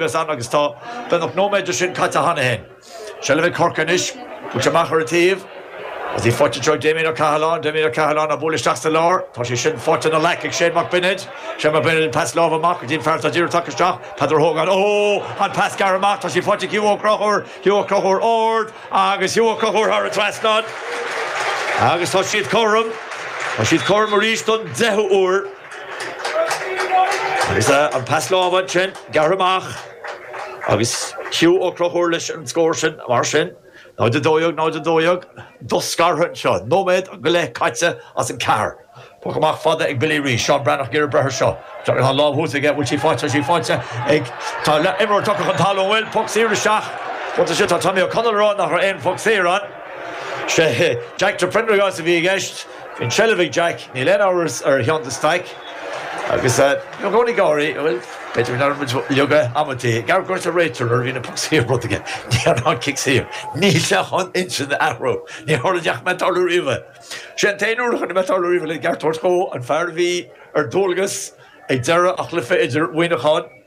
Bhíos ann agus tá beagnach nóiméad de sin caite cheana féin. Seilbh ag Corcaigh anois, an poc amach ar an taobh agus í faighte anseo ag Damien Ó Cathaláin, Damien Ó Cathaláin á bhualadh isteach sa lár, tá sé sin faighte ina ghlac ag Shane Mac Bionaid, Shane Mac Bionaid an pas láimhe amach go dtí an fear atá díreach tagtha isteach, Peadar Hogan, oh! an pas gearrtha amach, tá sí faighte ag Hugh Ó Conchúir, Hugh Ó Conchúir ard agus Hugh Ó Conchúir thar an trasnán agus tá siad cothrom, tá siad cothrom arís don deichiú uair. Agus an pas láimhe ansin gearrtha amach agus Hugh Ó Conchúir leis an scór sin mar sin, 0 12, 0 12, do-scartha anseo, nóiméad go leith caite as an ceathair. Poc amach fada ag Billy arís, Seán Breathnach ag iarraidh breith ar seo. Tá an lámh thuas aige, an bhfuil sí faighte, tá sí faighte ag, tá imreoir tugtha chun talún, bhuel, poc saor isteach, poc ansin, tá Tommy O'Connell ag rá nach raibh aon phoc saor ann, sé Jack de Prendergast a bhí i gceist. Bhí an tseilbh ag Jack, níl aon amhras ar Sheán de Staic, agus i gcónaí ag gáirí, bhfuil, b'fhéidir go ndearna muid leoga amantaí, ag argóint le réiteoir nuair a bhíonn poc saor, rud éigin nó an cic saor. Níl sé chun intinn a athrú. Níor airigh ná ní fhaca mé ag tarlú riamh. Sé an t-aon uair a chonaic mé ag tarlú riamh le ceart a thabhairt dhó, an fear a bhí ar dualgas ag deireadh an chluiche idir Mhuineachán,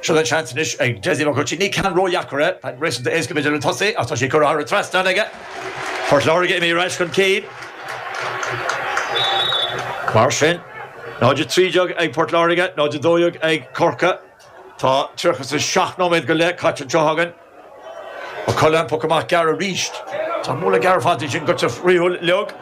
Seo an seans anois ag Dessie Hutchinson. Ní ceann ródheacair é, tá sé réasúnta éasca i gcomórtas le tosaí, agus tá sí curtha thar an trasnán aige. Port Láirge imithe ar ais chun cinn. Mar sin, 0-13 ag Port Láirge, 0-12 ag Corcaigh. Tá 37 nóiméad go leith caite anseo againn. Ó Coileáin an poc amach gearr arís. Tá an múnla gearr fanta ansin, goitse fríothúil liog.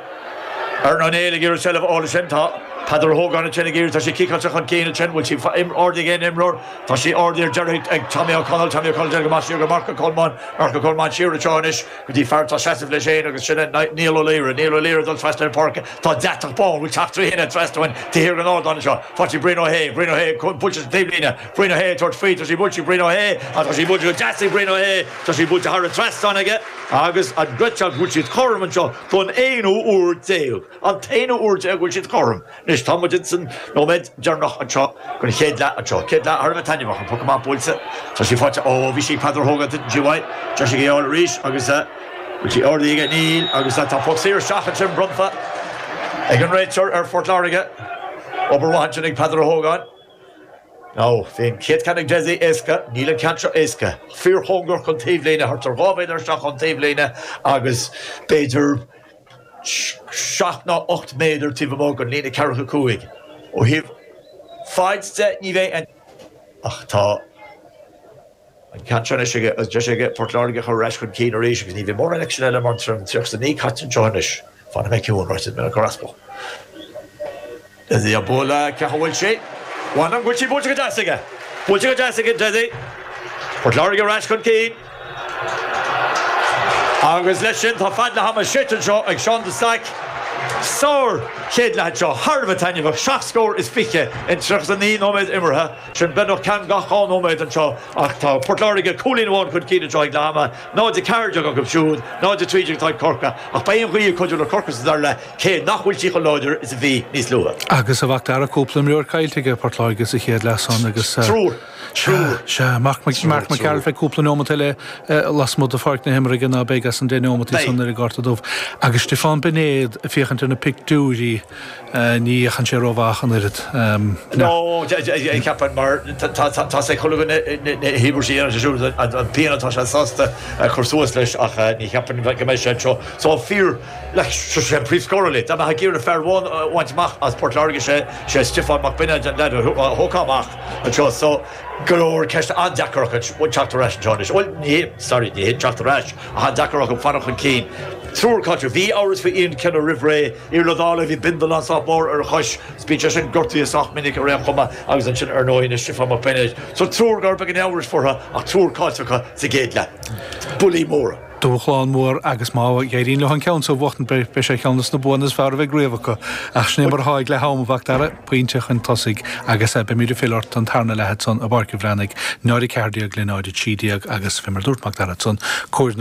Aaron O'Neill ag iarraidh seilbh a fháil ansin. Tá Peadar Ó hÓgáin ansin ag iarraidh, tá sé ciceáilte chun cinn ansin, bhfuil sí ardaithe ag aon imreoir? Tá sí ardaithe ar deireadh ag Tommy O'Connell, Tommy O'Connell déanamh go maith siar go Mark Ó Colmáin, Mark Ó Colmáin siar anseo anois go dtí fear atá ag seasamh leis féin agus sin é Niall Ó Laoire, Niall Ó Laoire ag dul trasna ar an pháirc, tá deatach bán, bhfuil teach trí thine trasna uainn taobh thiar den ardán anseo, faighte Brian Ó hAodha, Brian Ó hAodha ar bhruach na taobhlíne, Brian Ó hAodha ag tabhairt faoi, tá sí buailte ag Brian Ó hAodha, tá sí buailte go deas ag Brian Ó hAodha, tá sí buailte thar an trasnán aige agus an ghoitseacht go bhfuil siad cothrom anseo don aonú uair déag, an t-aonú uair déag a bhfuil siad cothrom. Anois, tá muid ins an nóiméad deireanach anseo den chéad leath anseo, céad leath thar a bheith taitneamhach, an poc amach buailte, tá sí faighte, ó bhí sí ag Peadar Hogan, tuiteann sí uaidh, téann sé ag a iarraidh arís agus bhfuil sí ardaithe aige, níl, agus tá poc saor isteach ansin bronnta ag an réiteoir ar Phort Láirge, obair mhaith ansin ag Peadar Ó hÓgáin. Now, bhí an chéad cheann ag Desi éasca, níl an ceann seo éasca. Fíorchóngarach don taobhlíne, thart ar dhá mhéadar isteach ón taobhlíne agus b'fhéidir seacht nó ocht méadar taobh amuigh den líne ceathracha cúig. Ó thaobh faid de, ní bheidh aon ach tá. An ceann seo anois aige, agus deis aige Port Láirge a chur ar ais chun cinn arís, agus ní bheidh mórán ag sin eile mar an trom tríocha a naoi caite anseo anois. Fanfaidh mé ciúin, ráiteas mé le Carrasco. D'fhéadfaí a bualadh ceacht a bhfuil sé. Mhaith liom go bhfuil sí buailte go deas aige. Buailte go deas aige, d'fhéadfaí. Port Láirge ar ais chun cinn. Agus leis sin, tá fead leath ama séite anseo ag Seán de Staic, sár chéad leath anseo, thar a bheith taitneamhach, seacht scór is fiche in tríocha a naoi nóiméad imeartha. Sin beagnach ceann gach dhá nóiméad anseo ach tá Port Láirge cúilín amháin chun cinn anseo ag leath ama, 0-14 acu siúd, 0-13 atá ag Corcaigh, ach beidh an ghaoth ag cuidiú le Corcaigh sa dara leath cé nach bhfuil sí chomh láidir is a bhí níos luaithe. Agus a Mhacdara, cúpla imreoir caillte aige Port Láirge sa chéad leath san agus, sea, sea, Marc Mac Gearailt, beidh cúpla neomat eile lasmuigh de pháirc na himeartha aige ná beidh as an deich neomataí san ar an gcárta dubh. Agus Stiofán Beinéad ag féachaint ar na pictiúirí, Ní fhéachann sé rómhaith ach an oiread. No, ceapaim, mar tá a fhios ag chuile dhuine na híobairtí ar an siúl, an phian atá sé sásta a chur suas leis, ach ní cheapaim go mbeidh sé anseo. So fear, like, sé an príomhscórálaí, dá mbeifeá ag iarraidh fear amháin a bhaint amach as Port Láirge, sé sé Stiofán Mac Beinéid an lead a thógfá amach anseo. So go leor ceisteanna, deacair acu teacht ar ais anseo anois. Bhuel, ní hé, sorry, ní hé teacht ar ais, ach an-deacair acu fanacht chun cinn. Triúr caillte. Bhí amhras faoi Ian Kenny roimh ré. Iarlaith Daly, bhí bindealán sách mór ar a chois 's bíonn sé sin gortaithe sách minic ar aon chuma agus ansin ar ndóigh anois Stiofán Mac Beinéid. So triúr go raibh beagán amhrais fúthu ach triúr caillte acu sa gcéad leath. Buillí móra. Dúshlán mór agus má éiríonn leo an ceann seo a bhuachtaint beidh sé ar cheann dos na buanna is fearr a bheidh riamh acu. Ach sin é mar atá ag leath am, a Mhacdara, pointe chun tosaigh agus beimid ag filleadh ort don tarna leath san i bPáirc an Bhreathnaigh, 0 14 le 0 13 agus fé mar dúirt Macdara san, cóir na.